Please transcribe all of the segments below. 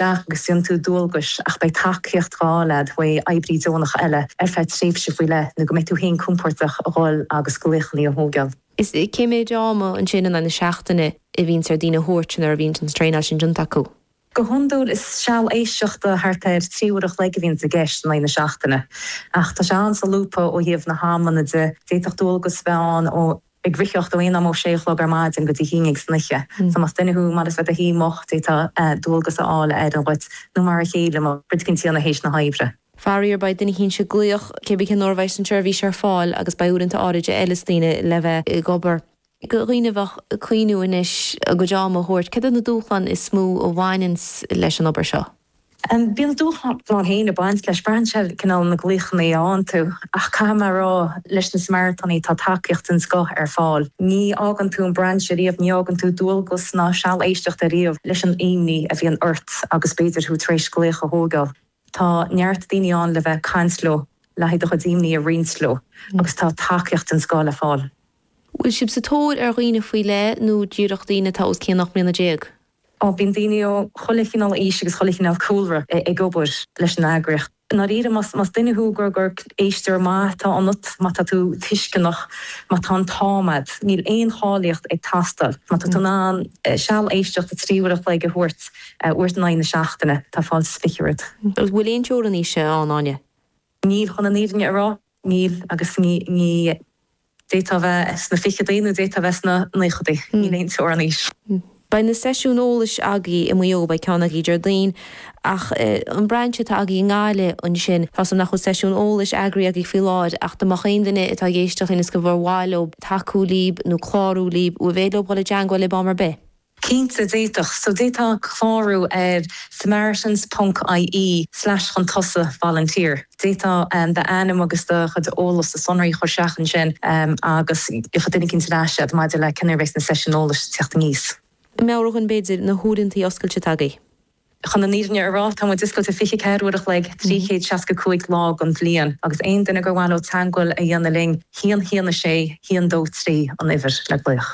agus déanann tú dualgais ach beidh tacaíocht dhá fháil agat uaidh oibrí deonach eile ar feadh tréimhse faoi leith nó go mbeidh tú féin compordach a dhul agus glaochanna a thóigeáil. Is cé méid ama ansin in aghaidh na seachtaine a bhíonns ar daoine a thabhairt nuair a bhíonns an traenáil sin déanta acu? Go hiondúil is seal éisteachta thart ar trí uair a chloig a bhíonns i gceist in aghaidh na seachtaine ach tá sé an-solúbtha ó thaobh na hamanna de, d'fhéadfadh dualgas a bheith ann ó ag ritheacht ó aon am ó 6 a chlog ar maidin go dtí a haon déag san oíche. So más duine thú ar maith leis éirí go moch d'fhéadfá dualgas a fháil a oireann dhuit nó mar a chéile tá cuid cinnte i ndéidh na hoibre. Faraor beidh duine éicint ag glaoch cé bith cén uair a bheas an tseirbhís ar fáil agus beidh uaireanta éagsúla ag feiliúint do dhaoine le bheith ag obair. go deonach ag cuimhniú anois a gcuid ama a thabhairt. Céard iad na dúshláin is mó a bhaineanns leis an obair seo? An mbíonn dúshlán ar leith ag baint leis? Braitheann sé ar chineál na nglaochannaí a fhaigheann tú, ach caithfidh mé a rá, leis na Samaritánaigh tá tacaíocht den scoth ar fáil. Ní fhágann tú an brainse riamh, ní fhágann tú dualgas ná seal éisteachta riamh leis an imní a bhíonn ort agus b'fhéidir thú tar éis glaoch a thóigeáil. Tá neart daoine ann le bheith ag caint leo, le haghaidh do chuid imní a roinnt leo agus tá tacaíocht den scoth le fáil. Bhfuil sibh sa tóir ar dhaoine faoi leith nó díreach daoine atá os cionn 18 mbliana? á, bíonn daoine ó chuile chineál aois agus chuile chineál cúlra ag obair leis an eagraíocht. I ndáiríre, más duine thú gur gur éisteoir maith atá ionat, má tá tú tuisceanach, má tá an t-am agat, níl aon cháilíocht ag teastáil, má tá tú in ann seal éisteachta trí uair a chloig a thabhairt uait in aghaidh na seachtaine, tá fáilte is fiche romhat. Agus an bhfuil aon teorainn aoise ann, Áine? Níl, chun an fhírinne a rá, níl agus d'fhéadfá a bheith sna ficheadaí nó d'fhéadfá a bheith sna naochadaí. Níl aon teorainn aoise. Beidh na seisiúin eolais agaí i Maigh Eo, beidh ceann agaí Déardaoin, ach an brainse atá agaí i nGaillimh ansin, tá 's agam nach bhfuil seisiún eolais eagraithe agaí faoi láthair ach dá mbeadh aon duine atá ag éisteacht linn is go mba mhaith leob tacú libh nó clárú libh, bhfuil bealach leob dhul i dteangmháil libh am ar bith? Cinnte, d'fhéadfadh siad. D'fhéadfadh siad clárú ar samaritans ponc IE slash chun tosaigh volunteer. D'fhéadfá d'ainm agus do chuid eolais, do shonraí a chur isteach ansin agus tiocfaidh duine éicint ar ais agat maidir le cén uair a bheidh na seisiúin eolais ag tíocht aníos. Meabhraigh dhom b'fhéidir na huaireantaí oscailte atá agaí. Chun an fhírinne a rá, tá muid oscailte 24 uair a chloig, 365 lá den bhliain agus aon duine gur mhaith leo teagmháil a dhéanamh linn, haon haon a sé, haon dó trí an uimhir le glaoch.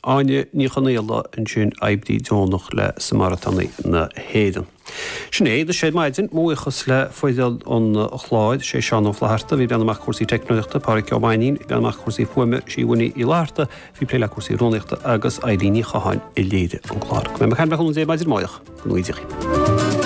Áine Ní Chonaola, ansin oibrí deonach le Samaritánaigh na hÉireann. Sin é d'Iris Aniar ar maidin, mo bhuíochas le foireann an chláir, sé Seán Ó Flaithearta a bhí ag breathnú amach do cúrsaí teicneolaíochta, Pádraig Ó Mainín ag breathnú amach do cúrsaí fuaime, Siobhán Uí Fhlatharta a bhí ag plé le cúrsaí rúnaíochta agus Eilín Ní Chatháin a léirigh an clár. Go mbeidh muid ag caint libh arís maidin amárach le cúnamh Dé.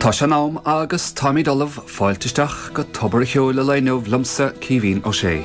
Tá sé in am agus táimid ullamh fáilte isteach go Tobar an Cheoil an lae inniu liomsa, Caoimhín Ó Sé.